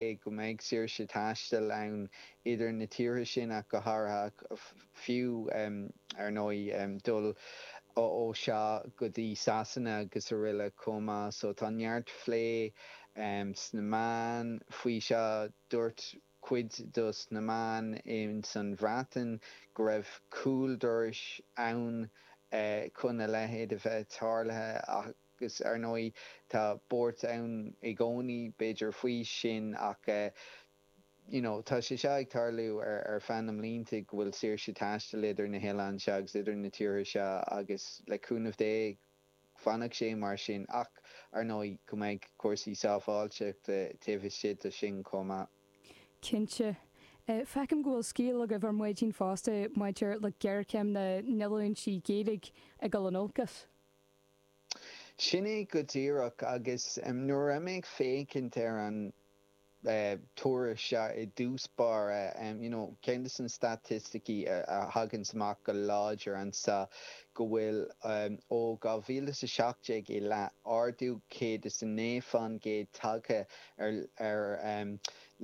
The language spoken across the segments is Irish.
go mbeidh saoirse taistil ann idir na tíortha sin ach go háirithe, ach fiú, ar ndóigh, dul ó, sea, go dtí Sasana agus aroile chomh maith. So tá neart phlé sna meáin faoi seo. Dúirt cuid dos na meáin ins an Bhreatain go raibh cúl dorais ann chun a leithéid a bheith tarlaithe ach, Agus ar ndóigh tá buairt ann i gcónaí b'fhéidir faoi sin ach you know tá sé seo ag tarlú ar feadh na mblianta go bhfuil saoirse taistil idir na hoileáin seo agus idir na tíortha seo agus le cúnamh Dé fanfaidh sé mar sin ach ar ndóigh go mbeidh cúrsaí sábháilteachta taobh istigh do sin chomh maith. Cinnte. Feicim go bhfuil scéal agaibh ar maidin fosta maidir le géarchéim na ndíolúintí Gaeilge ag dul in olcas. Sin é go díreach agus nuair a bhí mé ag féachaint ar an tuairisc seo i dtús báire, you know, ceann de na staitisticí a thagann amach go láidir anseo go bhfuil ó 2017 i leath ardú 109 faoin gcéad tagtha ar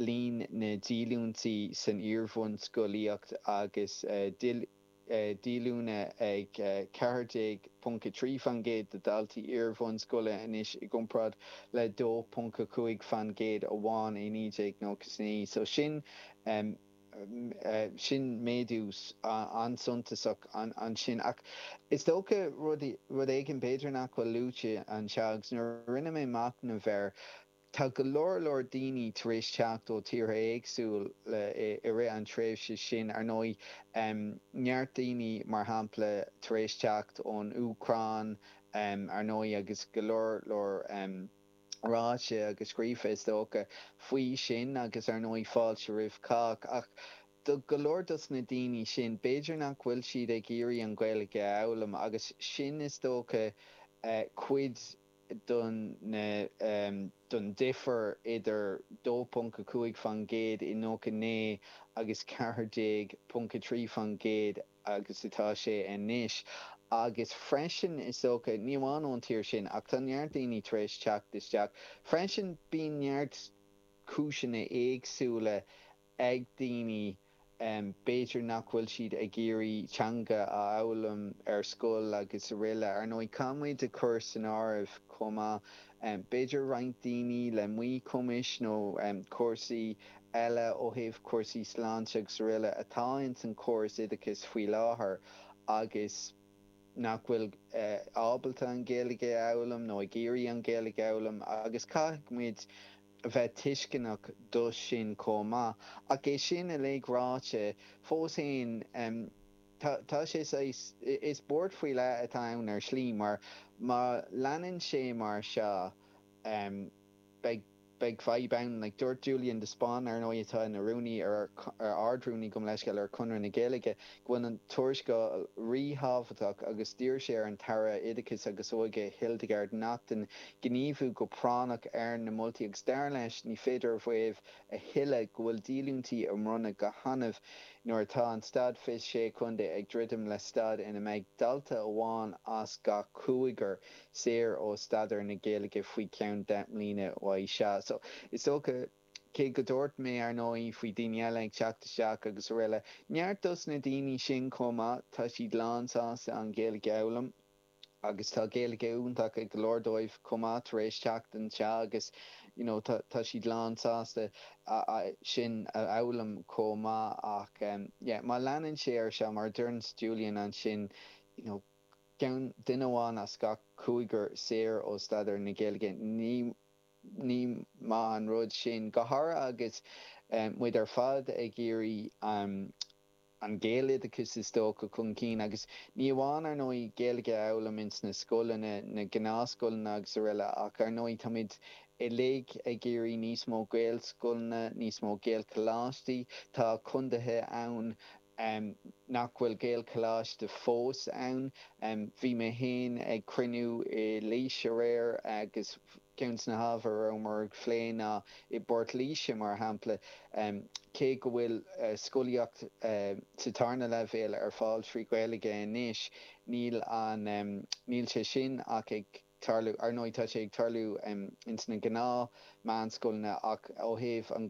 líon na ndíolúintí san iar-bhunscolaíocht agus díolúine ag 14.3% de dhaltaí iarbhunscoile anois i gcomparáid le 2.5% amháin i 1999 so sin méadú an-suntasach ansin. Ach is dócha rud éigin b'fhéidir nach bhfuil luaite anseo agus nuair a rinne mé machnamh air, Tá go leor leor daoine tar éis teacht ó tíortha éagsúla i rith an tréimhse sin, ar ndóigh, neart daoine, mar shampla, tar éis teacht ón Úcráin, ar ndóigh, agus go leor leor ráite agus scríofa, is dócha, faoi sin agus, ar ndóigh, fáilte roimh chách. Ach do go leor dos na daoine sin, b'fhéidir nach bhfuil siad ag iarraidh an Ghaeilge a fhoghlaim agus sin, is dócha, cuid. don, don difear idir 2.5% i 99 agus 14.3% agus atá sé anois agus freisin is dócha, ní amháin ón tír sin ach tá neart daoine tar éis teacht isteach freisin, bíonn neart cúiseanna éagsúla ag daoine, b'fhéidir nach bhfuil siad ag iarraidh teanga a fhoghlaim ar scoil agus aroile. Ar ndóigh, caithfidh muid a chur san áireamh chomh maith, b'fhéidir roinnt daoine le míchumais nó cúrsaí eile ó thaobh cúrsaí sláinte agus aroile atá ins an chóras oideachais faoi láthair agus nach bhfuil ábalta an Ghaeilge a fhoghlaim nó ag iarraidh an Ghaeilge a fhoghlaim agus caithfidh muid a bheith tuisceanach dó sin chomh maith. Ach é sin uilig ráite, fós fhéin tá sé saghas, is buairt faoi leith atá ann ar shlí mar má leanann sé mar seo beidh fadhb ann. Dúirt Julian de Spáinn, ar ndóigh atá ina rúnaí, ardrúnaí, gabhaim leithscéal, ar Chonradh na Gaeilge, go bhfuil an tuarascáil ríthábhachtach agus d'iarr sé ar an tAire Oideachais agus Óige Hildegarde Naughton gníomhú go práinneach ar na moltaí agus dar leis ní féidir a mhaíomh a thuilleadh go bhfuil díolúintí á mbronnadh go hannamh nuair atá an Stát 26 Chontae ag druidim le staid ina mbeidh dalta amháin as gach cúigear saor ó staidéar na Gaeilge faoi cheann deich mbliana. Cé go dúirt mé, ar ndóigh, faoi daoine eile ag teacht isteach agus aroile, neart dos na daoine sin chomh maith, tá siad lán sásta an Ghaeilge a fhoghlaim agus tá Gaeilge iontach ag go leor dóibh chomh maith tar éis teacht anseo agus you know tá siad lán sásta sin a fhoghlaim chomh maith ach yeah má leanann sé ar seo mar a deireann Julian ansin you know ceann duine amháin as gach cúigear saor ó staidéar na Gaeilge ní Ní maith an rud sin, go háirithe agus muid ar fad ag iarraidh an Gaeloideachas a thógáil chun cinn, agus ní amháin ar ndóigh Gaeilge a fhoghlaim ins na scoileanna, na gnáthscoileanna agus aroile, ach ar ndóigh táimid uilig ag iarraidh níos mó Gaelscoileanna, níos mó Gaelcholáistí, tá condaethe ann, em nach bhfuil gaelcholáiste fós ann em bhí mé féin ag cruinniú i laois aréir agus ceann de na hábhair a rabhamar á phlé ná i bport laoise mar shampla em cé go bhfuil eh scolaíocht eh sa tarna leibhéal ar fáil trí ghaeilge anois níl an em níl sé sin ach ag tarlú ar ndóigh tá sé ag tarlú em ins na gnáth meánscoileanna ach ó thaobh an